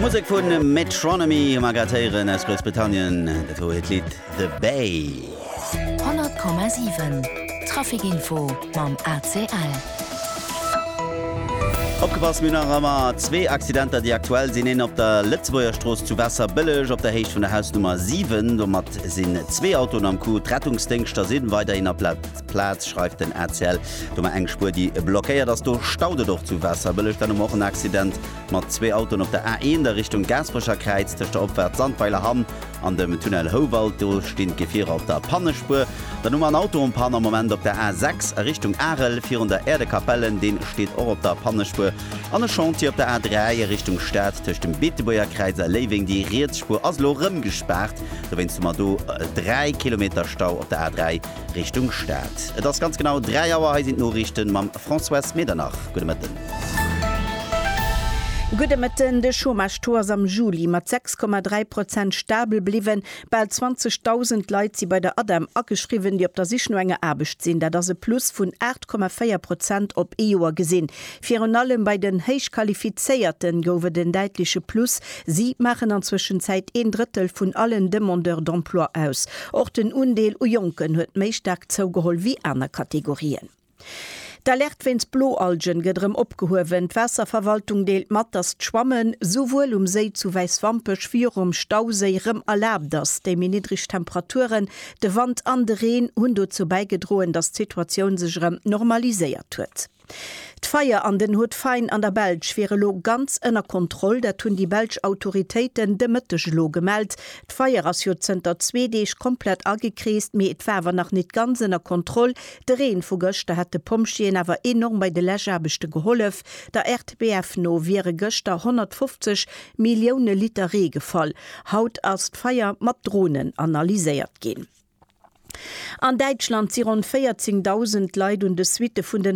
Musek vun Metronomy hu mer grad héieren aus Groussbritannien. Dat wor hiert Lidd The Bay. 100,7 Traficinfo mam ACL. Opgepasst, mir hunn nach ëmmer zwee Accidenter, déi aktuell sinn. Een op der Lëtzebuerger Strooss zu Waasserbëlleg op der Héicht vun der Hausnummer 7. Domat sinn zwee Autoen am Coup. D'Rettungsdéngschter si weiderhin op Plaz. Plaz schreift den ACL domat eng Spuer déi blockéiert ass. Do staut et och zu Waasserbëlleg. Dann hu mer och en Accident mat zwee Autoen op der A1 a Richtung Gaasperecherkräiz tëscht der Opfahrt Sandweiler Hamm an dem Tunnel Houwald. Do stinn d'Gefierer op der Pannespuer. Dann hu mer en Auto en Panne am Moment op der A6 a Richtung Arel virun der Äerdekapellen. Deen steet och op der Pannespuer. An e Chantier op der A3 a Richtung Stad tëscht dem Beetebuergerkräiz a Léiweng. Déi riets Spuer ass elo erëm gespaart dowéinst hu mer do 3 Kilometer Stau op der A3. Richtung Stad. Et ass ganz genau 3 Auer, hei sinn d'Noriichten mam Françoise Medernach. Gudde Mëtten. Gudde Mëtten. De Chômage-Taux ass am Juli mat 6,3 Prozent stabel bliwwen. Bal 20.000 Leit si bei der ADEM ageschriwwen, déi op der Sich no enger Aarbecht sinn. Dat ass e Plus vun 8,4 Prozent op ee Joer gesinn. Virun allem bei den Héichqualifizéierten gouf et en däitleche Plus, si maachen an Zwëschenzäit een Drëttel vun allen Demandeurs d'emploi aus. Och den Undeel u Jonken huet méi staark zougeholl wéi aner Kategorien. D'Alerte wéinst Bloalgen gëtt erëm opgehuewen. D'Waasserverwaltung deelt mat, datt d'Schwammen souwuel um Séi zu Wäiswampech wéi och um Stauséi erëm erlaabt ass. Déi méi niddreg Temperaturen, de Wand an de Reen hunn dozou bäigedroen, datt d'Situatioun sech erëm normaliséiert huet. D'Feier an den Haut Fain an der Belsch wier elo ganz ënner Kontroll. Dat hunn déi belsch Autoritéiten de Mëtteg elo gemellt. D'Feier ass jo zënter zwee Deeg komplett agekreest, mee et war awer nach net ganz ënner Kontroll. De Reen vu gëschter hätt de Pompjeeën awer enorm bei de Läschaarbechte gehollef. Der RTBF no wiere gëschter 150 Millioune Liter Ree gefall. Haut ass d'Feier mat Dronen analyséiert ginn. An Däitschland si ronn 14.000 Leit un de Suitte vun den